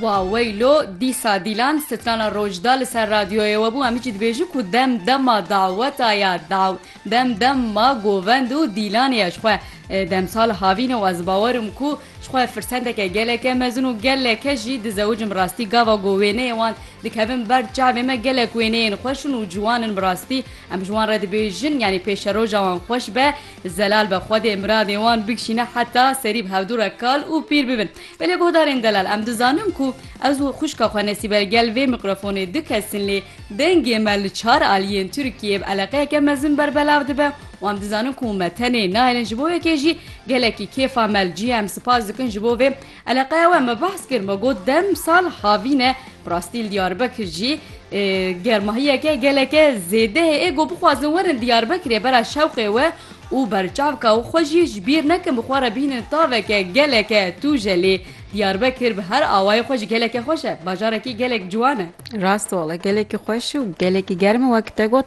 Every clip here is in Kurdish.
Wa weylo dîsa Dîlan strana roj da li ser radyoyê we bû em hiçî dibêjin ku dem dema daweta ya daw dem dem ma govend û Dîlanê ye ji xwe demsal havîne û ez bawer im ku ji xwe firsendeke geleke mezin û geleke jî dizewicim rastî gava ku wêneyê wan dikevin ber çavê me gelek wêneyên xweş in û ciwan in bi rastî em ji wan re dibêjin yanî pêşeroja wan xweş be Zelal be Xwedê miradê wan bikişîne heta serî bi hevdu re kal û pîr bibin. Belê guhdarên delal em dizanin ku ez û xwişka xwe Nesîbe gel vê mîkrofonê dikes in lê dengê me li çar aliyên Tirkiyeyê bi eleqeyeke mezin berbelav dibe û em dizanin ku me tenê nahêlin ji bo yekê jî gelekî kêfa me li cî ye em sipas dikin ji bo vê Eleqeya we me behs kir me got dem sal havîn e bi rastî li Diyarbekir jî germahiyeke geleke zêde heye got bixwazin werin Diyarbekirê bera şewqê we û berçavka û xwe jî ji bîr nekin bi xwe re bihînin taveke geleke tûje lê Diyarbekir bi her awayê xwe jî geleke xweş e bajarekî gelek ciwan e. Rast wala gelekî xweş û gelekî germ e wek te got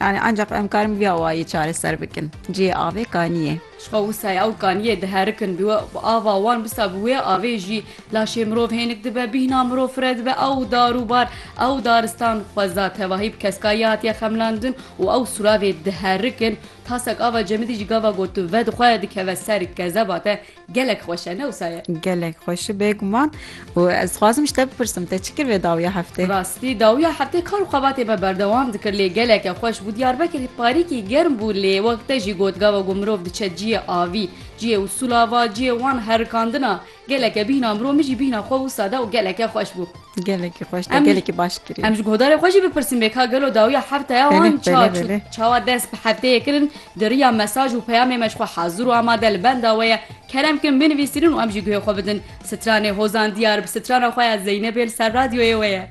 Yanî ancaq em karin bi vî awayî çareser bikin. Cihê avê kanî ye. Ji xwe wisa ye ew kanî ye diherikin bi wê bi ava wan wisa bi wê avê jî laşê mirov hênik dibe bîhna mirov fire dibe ew dar û bar ew daristan xweza tevahî bi keskayî hatiye xemlandin û ew sûravê diherikin tasek ava cemidî jî gava got vedixwe dikeve ser kezeba te Gelek xweş e ne wisa ye. Gelek xweş bê guman û ez dixwazim ji te bipirsim te çi kir vê dawiya heftê? Rastî dawiya heftê kar û xebatê me berdewam dikir lê geleke xweş bû Diyarbekirî parîkî germ bû lê wek te jî got gava ku mirov diçe ciyê avî ciyê û sûlava ciyê wan herikandina geleke bîhna mirov min jî bîhna xwe wisa da û geleke xweş bû. Gelekî xweş te gelekî baş kirî. Em ji godarê xwe jî bipirsin bê ka gelo dawiya heftaya wan ça çawa dest bi hefteyê kirin di riya mesaj û peyamê me ji xwe hazir û amade li benda we ye kerem kin binivîsînin û em jî guhê xwe bidin. Stranê Hozan Diyar bi strana xwe ya Zeynebê li ser radyoyê we ye.